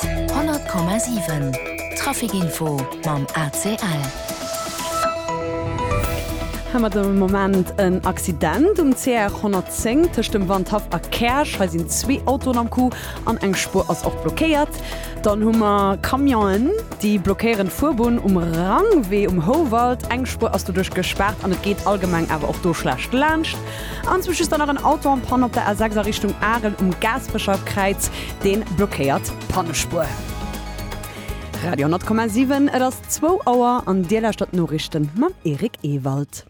100,7 Trafic-Info mam ACL. Hei mat dem Moment en Accident um CR 110 tëscht dem Wandhaff a Käerch. Hei sinn zwee Autoen am Coup an eng Spuer ass och blockéiert. Dann hu mer Camionen, déi blockéieren d'Fuerbunn um Rangwee um Houwald. Eng Spuer ass doduerch gespaart an et geet allgemeng awer och do schlecht laanscht. Anzwousch ass dann nach en Auto en Panne op der A6 a Richtung Arel um Gaasperecher Kräiz. Dee blockéiert d'Pannespuer. Radio 10,7, et ass zwou Auer an Dir lauschtert d'Noriichte mam Eric Ewald.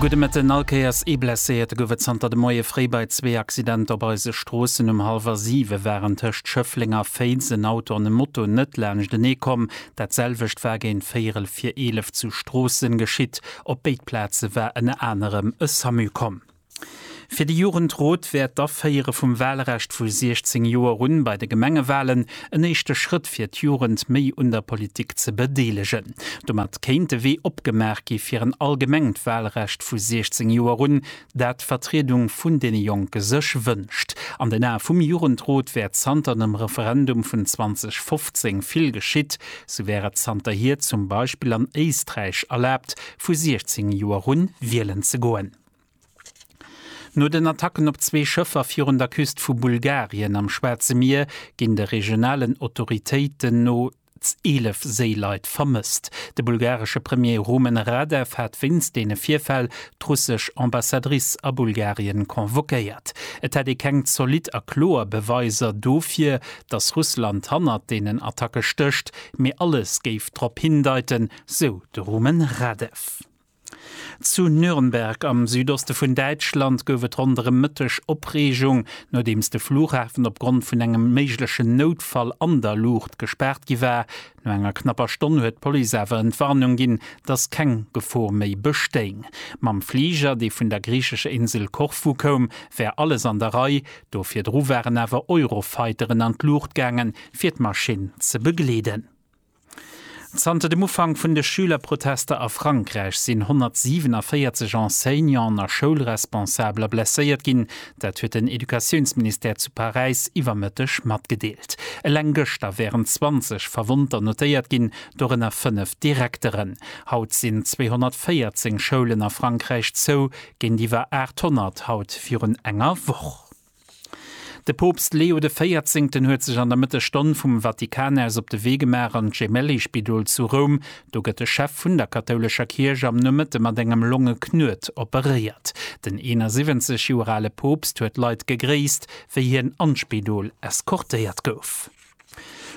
Gudde Mëtten allkéiers. Ee Blesséierte gouf et zanter de Moie fréi bei zwee Accidenter op eise Stroossen. Um hallwer siwe waren tëscht Schëffleng a Féiz en Auto an e Moto net laanschtenee komm. Dat selwecht war géint véierel vir eelef zu Stroossen geschitt. Op béid Plaze war ënner anerem e Samu komm. Fir de Jugendrot wär d'Aféiere vum Walrecht vu 16 Joer un bei de Gemengewalen en éischte Schrëtt fir d'Jugend méi un der Politik ze bedeelegen. Domat kéint de Wee opgemaach gi fir en allgemengt Walrecht vu 16 Joer un, dat d'Vertriedung vun deene Jonke sech wënscht. An den Ae vum Jugendrot wär zanter dem Referendum vun 2015 vill geschitt, sou wär et zanterhier zum Beispill an Éisträich erlaabt, vu 16 Joer un wielen ze goen. No den Attacken op zwee Schëffer virun der Küst vu Bulgarien am Schwaarze Mier ginn de regionalen Autoritéiten no, Mindestens 11 Séileit vermësst. De bulgaresche Premier Rumen Radev hat wéinst deene Virfäll d'russesch Ambassadrice a Bulgarien convoquéiert. Et hätt ee keng zolidd a kloer Beweiser dofir, datt Russland hannert deenen Attacke stécht, mee alles géif drop hindeiten, sou de Rumen Radev. Zu Nürnberg am Südoste vun Däitschland gouf et ronderëm de Mëtteg Opreegung, nodeems de Flughafen opgrond vun engem méiglechen Noutfall an der Luucht gespaart gi war. No enger knapper Stonn huet d'Police awer Entwarnung ginn, datt keng Gefor méi bestéing. Mam Fliger, dee vun der griichescher Insel Korfu koum, wär alles an der Rei. Do virdru waren awer Eurofighteren an d'Luucht gaangen, fir d'Maschinn ze begleeden. Zanter dem Ufank vun de Schülerprotester a Frankräich sinn 147 Enseignanten a Schoulresponsabler blesséiert ginn. Dat huet den Educatiounsministère zu Paräis iwwer Mëtteg matgedeelt. Eleng gëschter wären 20 Verwonnter notéiert ginn, dorënner fënnef Direkteren. Haut sinn 214 Schoulen a Frankräich zou, géintiwwer 800 haut virun enger Woch. De Poopst Leo de Véierzéngten huet sech an der Mëttesstonn vum Vatikan aus op de Wee gemaach an d'Gemelli-Spidol zu Roum. Do gëtt de Chef vun der kathoulescher Kierch am Nomëtte mat engem Longeknuet operéiert. Den 71 Joer ale Poopst huet d'Leit gegréisst, wéi hien an d'Spidol eskortéiert gouf.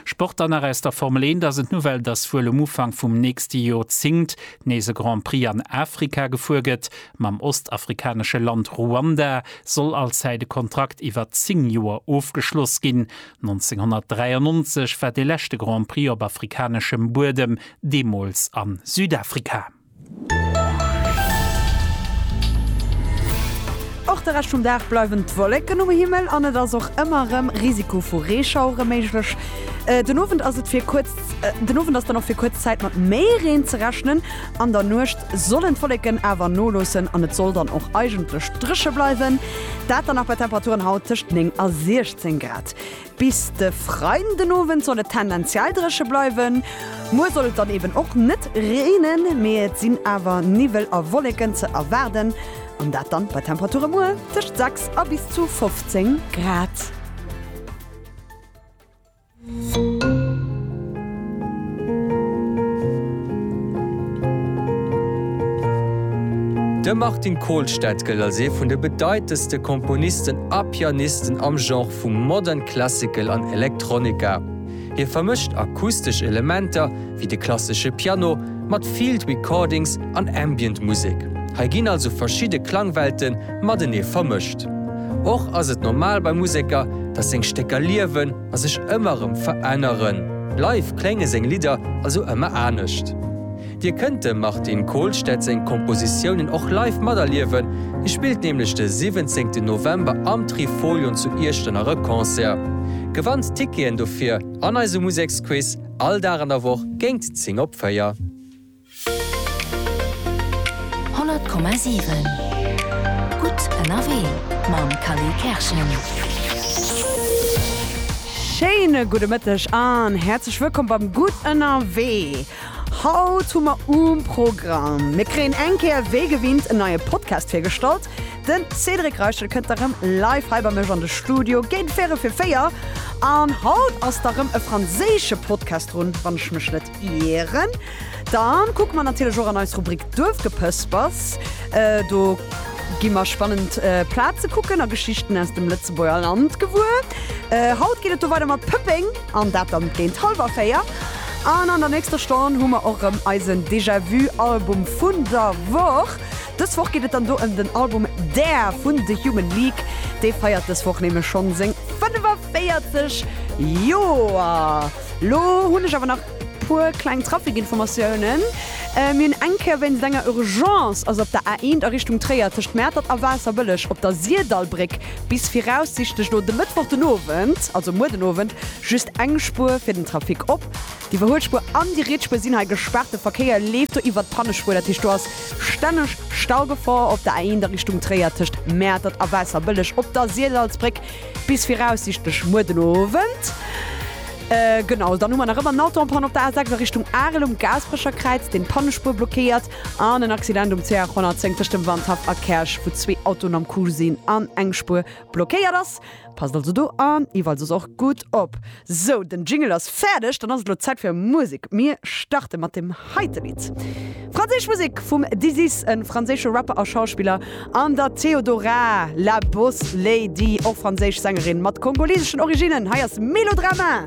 Sport dann nach aus der Formel 1 ass et d'Nouvelle, dass wuel um Ufank vum nächste Jorzéngt nees e Grand Prix an Afrika gefuer gëtt. Mam ostafrikanesche Land Ruanda soll allzäit e Kontrakt iwwer 10 Joer ofgeschloss ginn. 1993 war de leschte Grand Prix op afrikaneschem Buedem, deemools a Südafrika. Och de Rescht vum Dag bleiwen d'Wolleken um Himmel an et ass och ëmmer erëm Risiko vu Reeschauere méiglech. Den Owend ass et fir kuerz, den Owend ass dann och fir kuerz Zäit mat méi Reen ze rechnen. An der Nuecht sollen d'Wolleken awer noloossen an et soll dann och eigentlech dréche bleiwen. Dat dann nach bei Temperaturen haut tëscht 9 a 16 Grad. Bis de Freiden den Owend soll et tendenziell dréche bleiwen. Muer soll et dann eben och net reenen, mee et sinn awer Niwwel a Wolleken ze erwaarden an dat dann bei Temperature muer tëscht 6 a bis zu 15 Grad. De Martin Kohlstedt gëllt als ee vun de bedeitendste Komponisten a Pianisten am Genre vu Modern Classical an Electronica. Hie vermëscht akustesch Elementer, wéi de klassesche Piano, mat Field Recordings an Ambient Musek. Hei ginn also verschidde Klangwelte matenee vermëscht. Och ass et normal bei Museker, datt seng Stécker liewen a sech ëmmer erëm veränneren. Live klénge seng Lidder also ëmmer anescht. Dir kënnt dem Martin Kohlstedt seng Kompositiounen och live materliewen, hie spillt nämlech de 17 November am Trifolion zu Iechternach e Concert. Gewannt d'Ticketen dofir an eise Museksquiz, all Dag an der Woch géingt 10 op 4. 100,7 gutt ënnerwee mam Kally Kerschen. Schéine gudde Mëtteg an häerzlech wëllkomm beim Gutt ënnerwee. Haut hu mer um Programm, Mir kréien eng Kéier wéi gewinnt en neie Podcast virgestallt, den Cédric Reichel kënnt da rëm live hei bei mech an de Studio géint véierel fir véier an haut ass da rëm e franséische Podcast drun, wann ech mech net ieren. Dann kucke mer natierlech och an eis Rubrik Duerfgepëspers, do gi mer spannend Plaze kucken a Geschichten aus dem Lëtzebuerger Land gewuer. Haut geet et do weider mat Pëppeng. An dat dann géint halwer 4. An an der nächster Stonn hu mer och rëm eisen Déjà-vu Album vun der Woch. Dës Woch geet et dann do ëm den Album Dare vun The Human League. Dee feiert dës Woch nämlech schonn seng 45 Joer. Lo hunn ech awer nach puer kleng Trafikinformatiounen. Mir hunn eng Kéier wéinst enger Urgence, also op der A1 a Richtung Tréier tëscht Mäertert a Waasserbëlleg op der Sirdallbréck Bis viraussichtlech no dem Mëttwoch den Owend, also muer den Owend, just eng Spuer fir den Trafic op. Déi Iwwerhuelspuer an déi Rietsspuer sinn hei gespaart. De Verkéier leeft do iwwert d'Pannespuer. Dat heescht do ass stänneg Staugefor op der A1 a Richtung Tréier tëscht Mäertert a Waasserbëlleg op der Sirdalsbréck bis viraussichtlech muer den Owend. Genau, dann hu mer nach ëmmer en Autoen-Panne op der A6 a Richtung Arel um Gaasperecher Kräiz, deen d'Pannespuer blockéiert. An en Accident um CH 110 tëscht dem Wandhaff a Käerch, wou zwee Autoen am Coup sinn an eng Spuer blockéiert ass. Passt also do an iwwerall soss och gutt op. Sou, den Jingle ass fäerdeg, dann ass et elo Zäit fir Musek. Mir starte mat deem heite Lidd. Franséisch Musek vum Dizis, e franséische Rapper a Schauspiller, an der Theodora, La Boss Lady, och franséisch Sängerin mat kongoliseschen Originnen. Hei ass Melodrama.